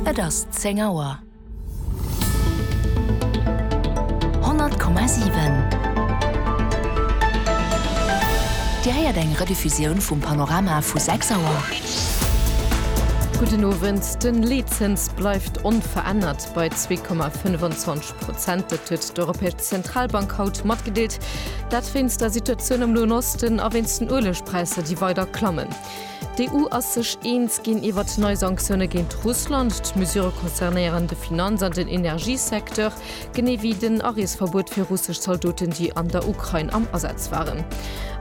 Et ass 10 Auer. 100,7 Dir héiert eng Rediffusioun vum Panorama vu 6 Auer. Gudden Owend. De Leetzëns bleift onverännert bei 2,25 Prozent. Dat huet d'Europäesch Zentralbank haut matgedeelt. Dat wéinst der Situatioun am Noen Osten a wéinst den Uelegpräisser, déi weider klammen. D'EU ass sech eens ginn iwwer nei Sanktioune géint Russland. D'Mesurë concernéieren de Finanz an den Energiesecteur, genee wéi den Areesverbuet fir russesch Zaldoten, déi an der Ukrain am Asaz waren.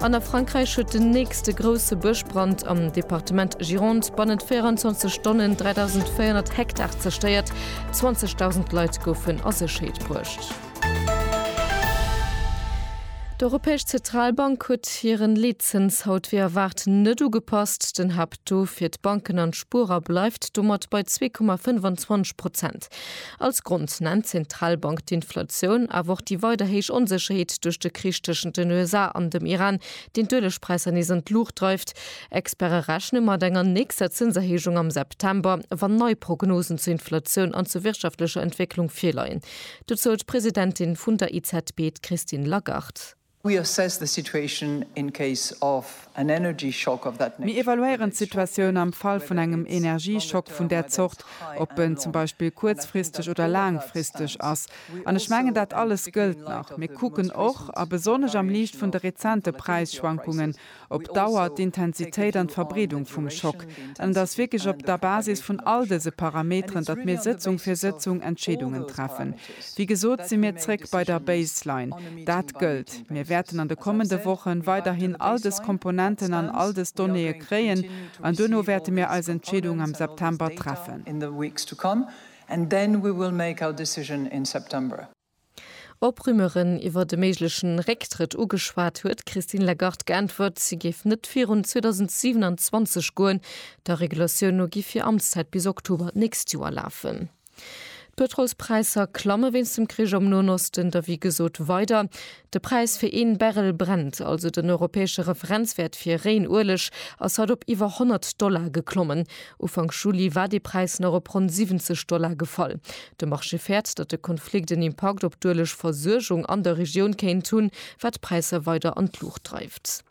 An a Frankräich huet den nächste grousse Bëschbrand am Departement Gironde bannent 24 Stonnen 3.400 Hektar zerstéiert, 20.000 Leit goufen a Sécherheet bruecht. D'Europäesch Zentralbank huet hiren Leetzëns haut wéi erwaart net ugepasst. Den Haapttaux fir d'Banken an d'Spuerer bleift domat bei zwee Komma 25 Prozent. Als Grond nennt d'Zentralbank d'Inflatioun, awer och déi weider héich Onsécherheet duerch de Krich tëschent den USA an dem Iran, deen d'Uelegpräisser nees an d'Luucht dreift. Experte rechne mat enger nächster Zënserhéijung am September, wann nei Prognosen zur Inflatioun an zur wirtschaftlecher Entwécklung virleien. Dozou d'Presidentin vun der EZB, d'Christine Lagarde. Mir evaluéieren d'Situatioun am Fall vun engem Energieschock vun där Zort, ob en zum Beispill kuerzfristeg oder laangfristeg ass. An ech mengen, dat alles gëllt nach. Mir kucken och, a besonnesch am Liicht vun de rezente Präisschwankungen, op Dauer, d'Intensitéit an d'Verbreedung vum Schock. An et ass wierklech op der Basis vun all dëse Parameteren, datt mir Sëtzung fir Sëtzung Entscheedungen treffen. Wéi gesot si mir zréck bei der Baseline. Dat gëllt. Mir wäerten an de kommende Woche weiderhin all dës Komponenten an all dës Donnéeë kréien an duerno wäerte mir eis Entscheedung am September treffen. Op Rumeuren iwwert e méigleche Récktrëtt ugeschwat, huet d'Christine Lagarde geäntwert, si géif net virun 2027 goen. Der Regulatioun no giff hir Amtszäit bis Oktober d'nächst Joer lafen. D'Pëtrolspräisser klamme wéinst dem Krich am Noen Osten derwéi gesot weider. De Präis fir een Barrel Brent, also den europäesche Referenzwäert fir réien Ueleg, ass haut op iwwer 100 Dollar geklommen. Ufank Juli war dee Präis nach op ronn 70 Dollar gefall. De Marché fäert, datt de Konflikt en Impakt op d'Uelegversuergung an der Regioun kéint hunn, wat d'Präisser weider an d'Luucht dreift.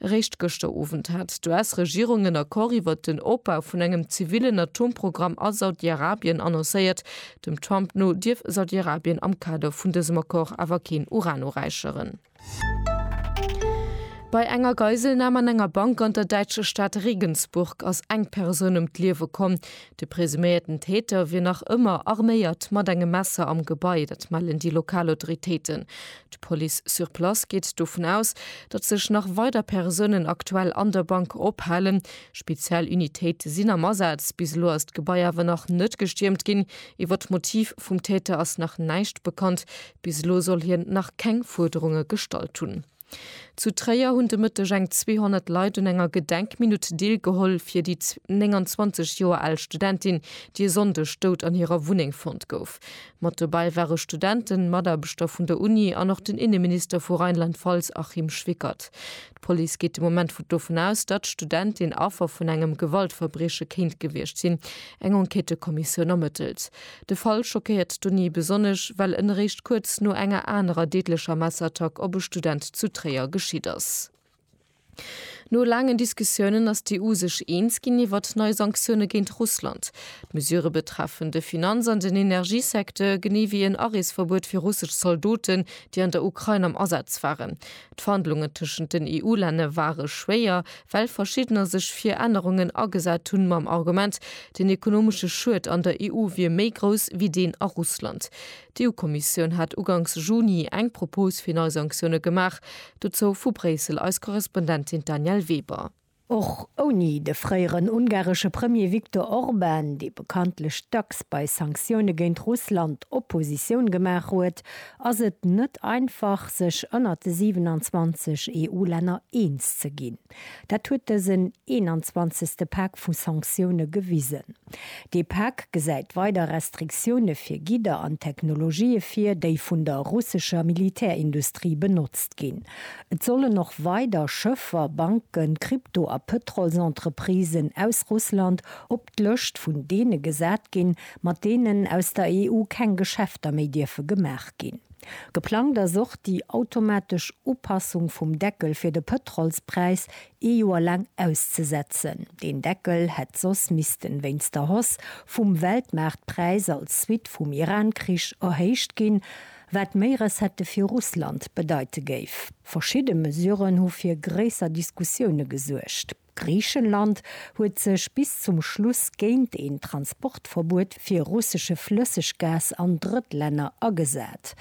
Eréischt gëschter Owend hat d'US-Regierung en Accord iwwer den Opbau vun engem zivillen Atomprogramm a Saudi-Arabien annoncéiert. Dem Trump no dierf Saudi-Arabien am Kader vun dësem Accord awer keen Uran uräicheren. Bei enger Geiselnam an enger Bank an der däitscher Stad Regensburg ass eng Persoun ëm d'Liewe komm. De presuméierten Täter wier nach ëmmer arméiert mat engem Messer am Gebai, dat mellen déi lokal Autoritéiten. D'Police sur place geet dovun aus, datt sech nach weider Persounen aktuell an der Bank ophalen. Speziell Unitéite sinn am Asaz. Bis elo ass d'Gebai awer nach net gestiermt ginn. Iwwer d'Motiv vum Täter ass nach näischt bekannt. Bis elo soll hien nach keng Fuerderunge gestallt hunn. Zu Tréier hunn de Mëtteg eng 200 Leit un enger Gedenkminutt deelgeholl fir déi 29 Joer al Studentin, déi e Sonndeg dout an hirer Wunneng fonnt gouf. Mat dobäi ware Studenten, Mataarbechter vun der Uni an och den Inneminister vu Rheinland-Pfalz Achim Schwickert. D'Police geet de Moment dovun aus, datt d'Studentin Affer vun engem Gewaltverbrieche kéint gewiescht sinn. Eng Enquêtëkommissioun ermëttelt. De Fall schockéiert d'Uni besonnesch, well en eréischt kuerz no enger anerer deedlecher Messerattack op e Student zu Tréier geschitt ass. No laangen Diskussiounen ass d'EU sech eens ginn iwwert nei Sanktioune géint Russland. D'Mesure betreffen de Finanz an den Energiesecteur, genee wéi en Areesverbuet fir russesch Zaldoten, déi an der Ukrain am Asaz waren. D'Verhandlungen tëschent den EU-Länne ware schwéier, well verschiddener sech fir Ännerungen agesat hunn, mam Argument, den ekonomesche Schued an der EU wier méi grouss wéi deen a Russland. D'EU-Kommissioun hat uganks Juni eng Propos fir nei Sanktioune gemaach. Dozou vu Bréissel eis Korrespondentin d'Danièle Weber. Och ouni de fréieren ungaresche Premier Viktor Orban, dee bekanntlech dacks bei Sanktioune géint Russland Oppositioun gemaach huet, ass et net einfach, sech ënnert de 27 EU-Länner eens ze ginn. Dat huet dësen 21. Pak vu Sanktioune gewisen. Dee Pak gesäit weider Restriktioune fir Gidder an Technologië vir, déi vun der russescher Militärindustrie benotzt ginn. Et sollen och weider Schëffer, Banken, Krypto a Pëtrolsentreprisen aus Russland op d'Lëscht vun deene gesat ginn, mat deenen aus der EU keng Geschäfter méi dierfe gemaach ginn. Geplangt ass och déi automatesch Upassung vum Deckel fir de Pëtrolspräis ee Joer laang auszesetzen. Deen Deckel hätt soss missten, wéinst der Hausse vum Weltmaartpräis als Suite vum Iran-Krich, erhéicht ginn, wat méi Recettë fir Russland bedeite géif. Verschidde Mesuren hu fir gréisser Diskussioune gesuergt. Griichenland huet sech bis zum Schluss géint een Transportverbuet fir russesche Flësseggas an Drëttlänner agesat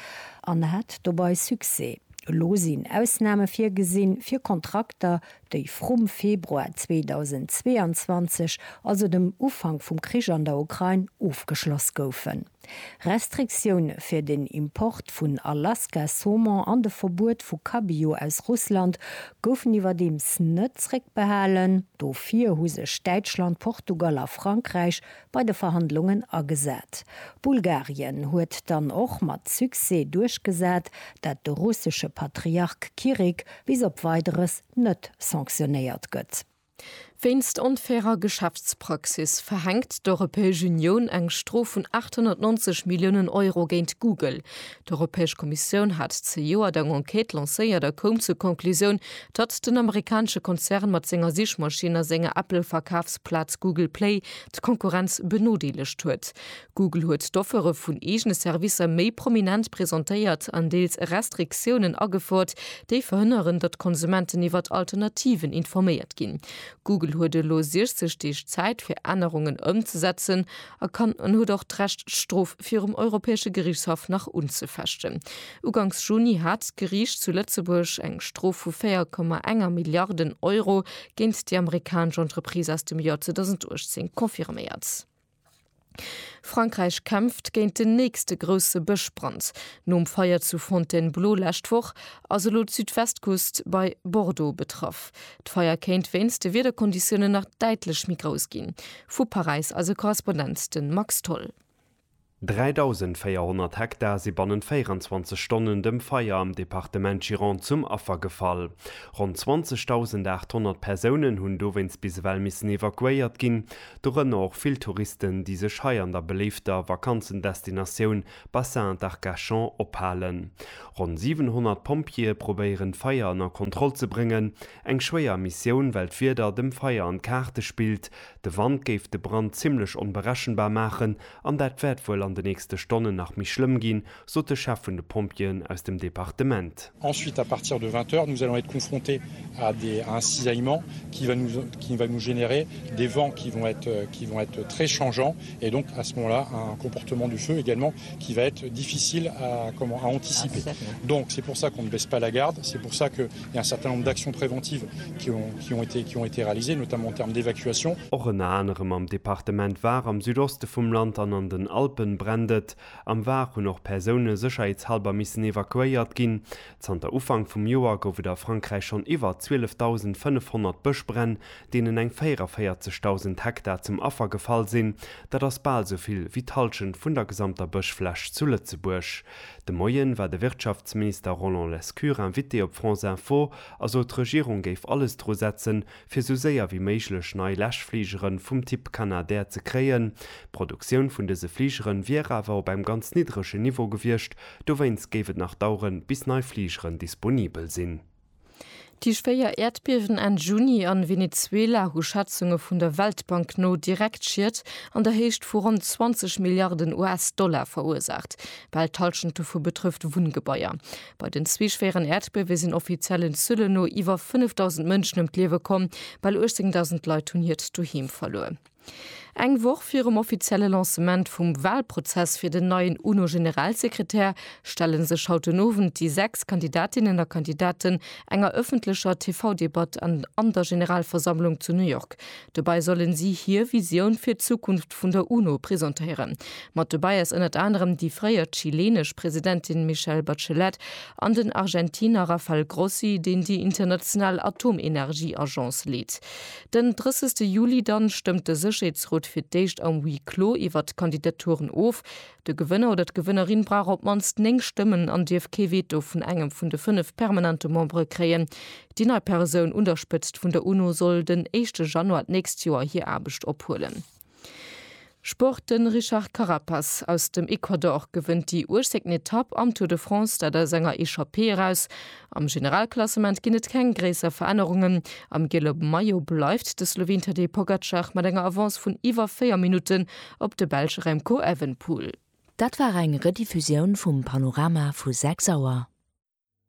an hat dobei Succès. Elo sinn Ausname virgesinn fir Kontrakter, déi vrum Februar 2022, also dem Ufank vum Krich an der Ukrain, ofgeschloss goufen. Restriktioune fir den Import vun Alaska-Saumon an de Verbuet vu Cabillaud aus Russland goufen iwwerdeems net zréckbehalen. Dofir hu sech Däitschland, Portugal a Frankräich bei de Verhandlungen agesat. Bulgarien huet dann och mat Succès duerchgesat, dat de russesche Patriark Kirik bis op Weideres net sanktionéiert gëtt. Wéinst onfairer Geschäftspraxis verhänkt d'Europäesch Unioun eng Strof vun 890 Milliounen Euro géint Google. D'Europäesch Kommissioun hat zejoert eng Enquête lancéiert a koum zur Conclusioun, datt den amerikanesche Konzern mat senger Sichmaschinn a senger Apple-Verkafsplaz Google Play d'Konkurrenz benodeelegt huet. Google huet d'Offere vun eegene Servicer méi prominent presentéiert an deels Restriktiounen agefouert, déi verhënneren, datt d'Konsumenten iwwert Alternativen informéiert ginn. Google huet elo 60 Deeg Zäit, fir Ännerungen ëmzesetzen a kann an huet och d'Recht, d'Strof virum Europäesche Geriichtshaff nach unzefechten. Uganks Juni hat d'Geriicht zu Lëtzebuerg eng Strof vu 4,1 Milliarden Euro géint déi amerikanesch Entreprise aus dem Joer 2018 confirméiert. Frankräich kämpft géint den nächste grousse Bëschbrand. Nom Feier zu Fontainebleau lescht Woch ass elo d'Südwestküst bei Bordeaux betraff. D'Feier kéint wéinst de Wiederkonditiounen nach däitlech méi grouss ginn. Vu Paräis eise Korrespondent, de Max Tholl. 3.400 Hektar si bannent 24 Stonnen dem Feier am Departement Gironde zum Affer gefall. Ronn 20.800 Persounen hunn dowéinst bis ewell missen evakuéiert ginn, dorënner och vill Touristen, déi sech hei an der beléifter Vakanzendestinatioun Bassin d'Arcachon ophalen. Ronn 700 Pompjeeë probéieren d'Feier ënner Kontroll ze bréngen, eng schwéier Missioun, well d'Wieder dem Feier an d'Kaarte spillt, De Wand géif de Brand zimmlech onberechenbar maachen an dat wäert wuel an de nächste Stonnen nach méi schlëmm ginn, sot de Chef vun de Pompjeeën aus dem Departement. Ensuite, à partir de 20 heures, nous allons être confrontés à des, à un cisaillement qui va nous, qui va nous générer des vents qui vont être, qui vont être très changeants et donc à ce moment-là un comportement du feu également qui va être difficile à, comment, à anticiper. Donc c'est pour ça qu'on ne baisse pas la garde, c'est pour ça que, Och ënner anerem am Departement Var am Südoste vum Land an an den Alpen brennt et. Am Var hunn och Persoune sécherheetshalber missen evakuéiert ginn. Zanter Ufank vum Joer gouf et a Frankräich schonn iwwer 12.500 Bëschbränn, deenen eng 44.000 Hektar zum Affer gefall sinn. Dat ass bal esou vill wéi d'Hallschent vun der gesamter Bëschfläch zu Lëtzebuerg. De Moien war de Wirtschaftsminister Roland Lescure Invité op France Info a sot d'Regierung géif alles dru setzen, fir sou séier wéi méiglech nei Läschfligere vum Typ Canadair ze kréien. D'Produktioun vun dëse Fligere wier awer op engem ganz niddregen Niveau gewiescht, dowéinst géif et nach daueren, bis nei Fligeren disponibel sinn. Tief 4 Äerdbiewen Enn Juni a Venezuela hu Schätzunge vun der Weltbank no direkt Schied an der Héicht vu ronn 20 Milliarden US-Dollar verursaacht. Bal d'Hallschent dovu betrëfft Wunngebaier. Bei den zwee schwéieren Äerdbiewe sinn offiziellen Zuele no iwwer 5.000 Mënschen ëm d'Liewe komm. Bal 18.000 Leit hunn hiert Doheem verluer. Eng Woch virum offizielle Lancement vum Walprozess fir den neien UNO-Generalsekretär stelle sech haut den Owend déi sechs Kandidatinnen a Kandidaten enger ëffentlecher TV-Debatt an der Generalversammlung zu New York. Dobäi sollen si hir Visioun fir d'Zukunft vun der UNO presentéieren. Mat dobäi ass ënnert anerem déi fréier chileenesch Presidentin Michelle Bachelet an den Argentiner Rafael Grossi, deen déi international Atomenergieagence leet. Den 30 Juli dann stëmmt de Sécherheetsrot fir d'éischt am Huis clos iwwert d'Kandidaturen of. De Gewënner oder d'Gewënnerin brauch op d'mannst 9 Stëmmen an dierf kee Veto vun engem vun de 5 permanente Membere kréien. Déi nei Persoun un der Spëtzt vun der UNO soll den éischte Januar d'nächst Joer hir Aarbecht ophuelen. Sport, De Richard Carapaz aus dem Ecuador gewënnt déi uechzéngten Etapp am Tour de France, dat aus enger Echappée eraus. Am Generalklassement ginn et keng gréisser Verännerungen. Am giele Maillot bleift de Sloween Tadej Pogacar mat enger Avance vun iwwer 4 Minutten op de Belsch Remco Evenepoel. Dat war eng Rediffusioun vum Panorama vu 6 Auer.